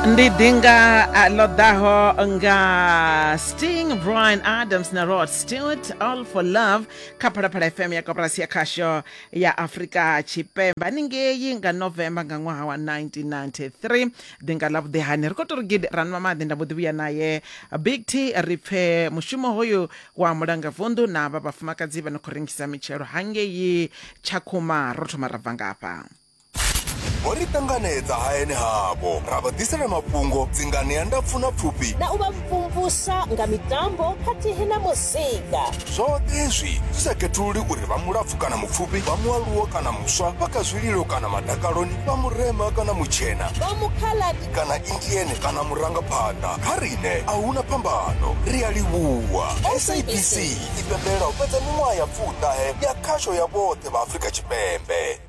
ndi dinga uh, ḽo ḓaho nga sting brian adams na rod stewart all for love kha phalaphala fm ya koporasi ya khasho ya afrika tshipembe haningei nga november nga ṅwaha wa 1993 dinga ḽa vhuḓehani ri khou tori gidi ranwa maḓi nda mbo ḓi vhuya naye big t ri pfe mushumo hoyu wa mulanga vundu na vha vhafumakadzi vha no khou rengisa mitshelo hangei tshakhuma ro thoma ra bva ngafha ho ri ṱanganedza hayani havho ra vha ḓisela mafhungo dzingani ya ndapfu na pfufhi na u vha mvumvusa nga mitambo khathihi na muzika zwoṱhe hezwi zwi sa khethululi uri vha mulapfu kana mupfufhi vha mualuwo kana muswa vha kha zwililo kana madakaloni vha murema kana mutshena vha mukhaladi kana indiene kana murangaphanḓa kha riṋe a huna phambano ri a livhuwa sabc i pembelela u fhedza miṅwaha ya pfuṱahe ya khasho ya vhoṱhe vha afrika tshipembe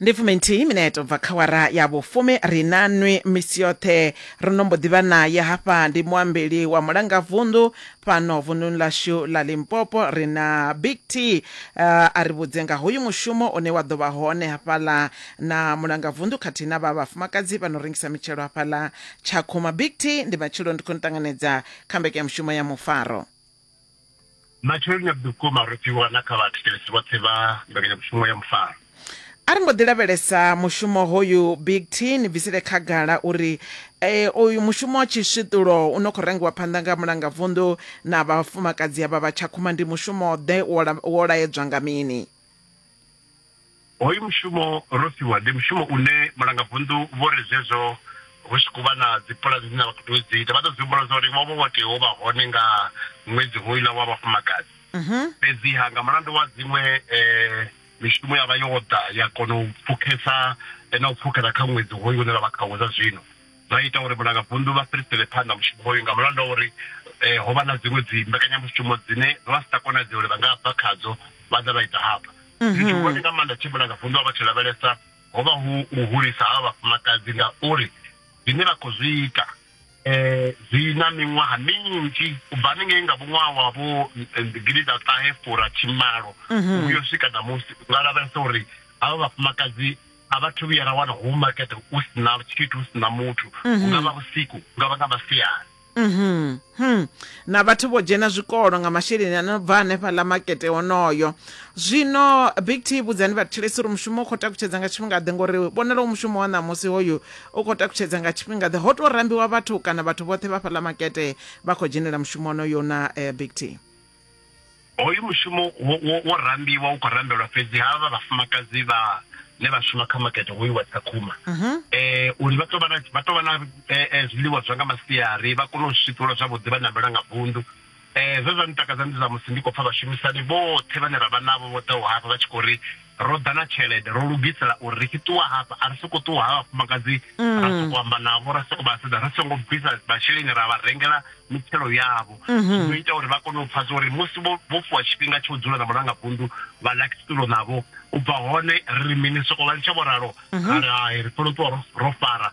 Ndi fuminthihi mineto bva kha wara ya vhufumi ri na nwi misi yoṱhe. Ri no mbo ḓi vha nae hafha ndi muambeli wa mulangavunḓu fhano vunḓuni ḽashu ḽa Limpopo ri na Big T a ri vhudze nga hoyu mushumo une wa ḓo vha hone hafhaḽa na mulangavunḓu khathihi na vha vhafumakadzi vha no rengisa mitshelo hafhaḽa Tshakhuma. Big T, ndi matshelo ndi khou ni ṱanganedza kha mbekanyamushumo ya Mufaro. Matsheloni a vhukuma ro fhiwa na kha vhathetshelesi vhoṱhe vha mbekanyamushumo ya mufaro. A ri mbo ḓi lavhelesa mushumo hoyu Big T, ni bvisele khagala uri e, oyu mushumo wa tshiswiṱulo u no khou rangiwa phanḓa nga Mulangavunḓu na vhafumakadzi avha vha Tshakhuma ndi mushumo-ḓe, wo laedzwa nga mini? Hoyu mushumo ro fhiwa ndi mushumo une mulangavunḓu vho ri zwezwo hu tshi khou vha na dzipulani dzine vha khou tea u dzi ita vha ḓo dzi humbula zwa uri vho vha vho tea u vha hone nga ṅwedzi hoyula wa vhafumakadzi mhm. fhedziha nga mulandu wa dziṅwe um mishumo ya vha yo ḓa ya kona u pfukhesa na u pfukhela kha ṅwedzi hoyu une ra vha khawo zwa zwino zwa ita uri vhulangavunḓu vha fhirisele phanḓa mushumo hoyu nga mulandu wa uri ho vha na dziṅwe dzi mbekanyamushumo dzine vha vha si tsha konadzea uri vha nga bva khadzo vha ḓa vha ita hafha. Tshithu tshihulwane nga maanḓa tshe vhulangavunḓu ha vha tshi lavhelesa ho vha hu u hulisa havha vhafumakadzi ngauri zwine vha khou zwi ita zwi na miṅwaha minzhi u bva haningei nga vhuṅwaha wa vho gidiḓaṱahefurathimalo u yo swika ṋamusi. U nga lavhelesa uri havha vhafumakadzi a vha thu vhuya ra wana hu makete hu si na tshithu hu si na muthu hu nga vha vhusiku hu nga vha nga masiari Mhm. Hmm. na vhathu vho dzhena zwikolo nga masheleni a no bva hanefha ḽa makete honoyo zwino big t vhudzani vhathetshelesi uri mushumo u khou takutshedza nga tshifhingaḓe ngori vhonala u mushumo wa ṋamusi hoyu u khou takutshedza nga tshifhingaḓe ho tou rambiwa vhathu kana vhathu vhoṱhe vha fhaḽa makete vha khou dzhenela mushumo honoyo na eh, big t hoyu mushumo wo rambiwa u khou rambelwa fhedzi ha vha vhafumakadzi vha ne vha shuma kha makete hoyu wa tsakhuma um mhm. eh, uri vha tou vha na eh, eh, zwiḽiwa zwa nga masiari vha kone u swifhiwa zwavhuḓi vha nambela nga vundu um zwe zwa ntakadza ndi zwa musi ndi khou pfa vhashumisani vhoṱhe vhane ra vha navho vho ḓaho hafha vha tshi khou ri ro ḓa na tshelede ro lugisela uri ri tshi ṱuwa hafha a ri soko ṱuwa ha vhafumakadzi ra mm. soko amba navho ra soko vha sedza ri songo bvisa masheleni ra vha rengela mitshelo yavho mhm. zwo ita uri vha kone u pfa zwa uri musi vho fuwa tshifhinga tsho dzula na mulanga vundu vha lakisitulo navho u bva hone ri mini soko vha litsha vho ralo mhm. ra ri hai ri funa u ṱuwa ro fara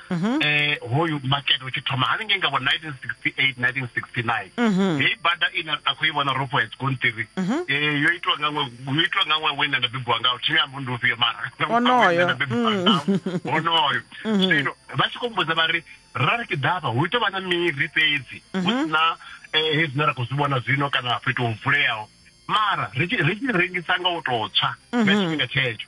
mhm. eh hoyu market utshi thoma hani ngenga bo 1968 1969 mhm. hei bada ina a khou i vhona ropo ya tsikontiri mhm. eh yo itwa nga ngwe yo itwa nga ngwe wena ndabebiwa ngawo thimi ambo ndi ufhio mara onoyo onoyo sino vha tshi kombudza vha ri ra ri kidava hu ito vha na miri fhedzi hu sina eh hezwi na ra khou zwi vhona zwino kana fhethu ho vuleaho mara ri tshi rengisa nga u tou tswa nga tshifhinga tshetsho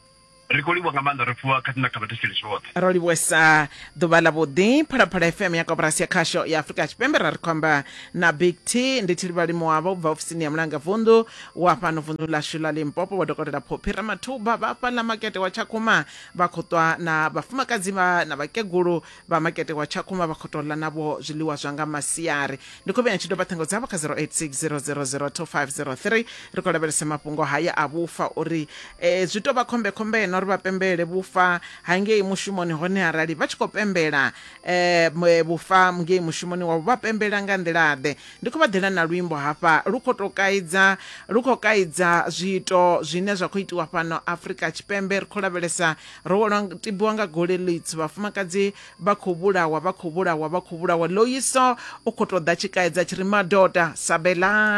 ri khou livhuwa nga maanḓa ri pfuwa khathihi na kha vhathetshelesi vhoṱhe ro livhuwesa ḓuvha ḽa vhuḓi phalaphala fm ya koporasi ya khasho ya afurika tshipembe ra ri khou amba na big t ndi thilivhalimo wavho ubva ofisini ya mulanga vunḓu wa fhano vunḓu ḽashu ḽa limpopo wa dokotela phophi ramathuba vha fhaḽa makete wa tshakhuma vha khou ṱwa na vhafumakadzi vha na vhakegulu Vha makete wa Tshakhuma vha khou tou ḽa navho zwiḽiwa zwa nga masiari. Ndi khou vhea ni tshi doba ṱhingo dzavho kha 0860002503. Ri khou lavhelesa mafhungo haya a vhufa uri e, zwi tou vha khombekhombe na uri vha pembele vhufa ha ngei mushumoni hone arali vha tshi khou pembela e, vhufa ngei mushumoni wavho vha pembela nga nḓila-ḓe. Ndi khou vha ḓela na luimbo hafha lu khou tou kaidza lu khou kaidza zwiito zwine zwa khou itiwa fhano Afrika Tshipembe ri khou lavhelesa Ro welwa nga- tibiwa nga gole ḽitswu vhafumakadzi vha khou vhulawa vha khou vhulawa vha khou vhulawa loyiso u khou tou ḓa tshikaedza tshi ri madoda sabelani